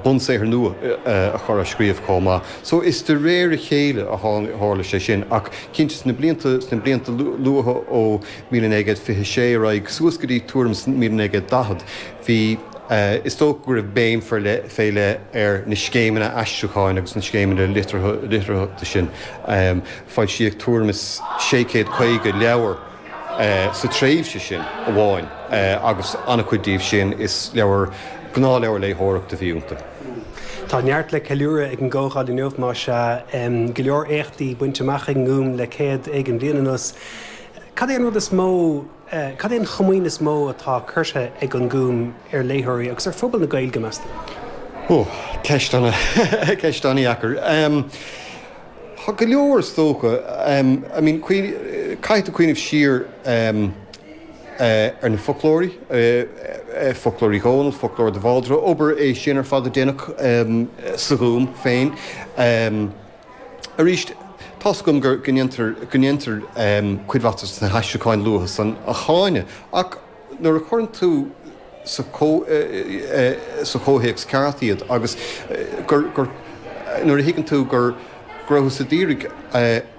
bunsaothar nua a chur á scríobh chomh maith. So is de réir a chéile a tharla sé sin ach cinnte sna blianta luatha ó míle naoi gcéad fiche sé ar aghaidh suas go dtí tuairim míle naoi gcéad daichead bhí, is dócha go raibh béim fé leith ar na scéimeanna aistriúcháin agus na scéimeanna litearthachta sin. Foilsíodh tuairim is sé céad caoga leabhar. sa tréimhse sin amháin, agus an-chuid díobh sin, is leabhair, gnáthleabhair léitheoireachta a bhí iontu. Tá neart le ceiliúradh ag an gcomhdháil inniu, má sea, go leor éachtaí bainte amach ag an nGúm le céad bliain anuas. Cad é an rud is mó, cad é an chomaoin is mó atá curtha ag an nGúm ar léitheoirí agus ar phobal na Gaeilge, meas tú? Ó, ceist ana-dheacair. Tá go leor is dócha. I mean caithfidh tú cuimhneamh siar ar na foclóirí, Foclóir Uí Dhónaill, Foclóir de Bhaldraithe, obair é sin ar fad a deineadh sa Ghúm féin. Arís tá 's agam go ndéantar cuid mhaith de na haistriúcháin luatha san a cháineadh ach, nuair a chuireann tú sa chomhthéacs ceart iad agus nuair a thuigeann tú go raibh siad d'iarraidh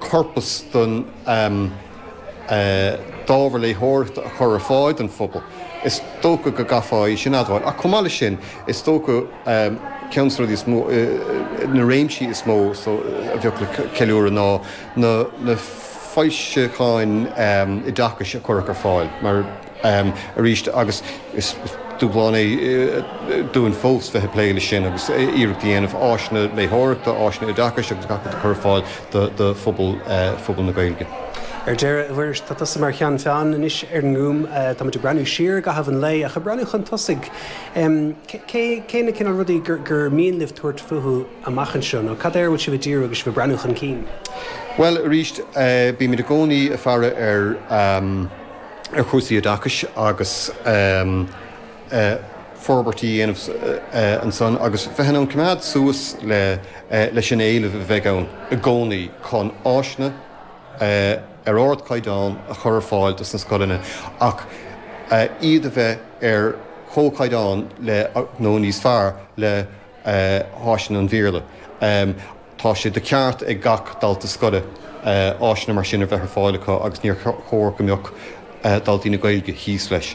corpas den d'ábhar léitheoireachta a chur ar fáil don phobal, is dócha go gcaithfeá é sin a admháil. Ach chomh maith leis sin, is dócha ceann des na rudaí, na réimsí is mó a bheadh le ceiliúradh ná, na foilseacháin oideachais a cuireadh ar fáil, mar aríst agus is dúshlán é dúinn fós bheith ag plé leis sin agus iarracht a dhéanamh áiseanna léitheoireachta, áiseanna oideachais agus gach rud a chur ar fáil do phobal na Gaeilge. Ar deireadh, a Mhuiris, tá tusa mar cheann feadhna anois ar an nGúm. Tá muid ag breathnú siar i gcaitheamh an lae, ach ag breathnú chun tosaigh, cé na cineál rudaí gur mian libh tabhairt fúthu? amach anseo, nó cad air a bhfuil sibh ag díriú agus sibh ag breathnú chun cinn? Bhuel, arís, bímid i gcónaí ag faire ar chúrsaí oideachais agus forbairtí a dhéanamh ansan agus bheith in ann coimeád suas leis an éileamh a bheidh ann i gcónaí chun áiseanna ar ardchaighdeán a chur ar fáil dos na scoileanna ach iad a bheith ar chomhchaighdeán le, nó níos fearr le. háiseanna an Bhéarla. Tá sé de cheart ag gach dalta scoile áiseanna mar sin a bheith ar fáil acu agus níor chóir go mbeadh daltaí na Gaeilge thíos leis.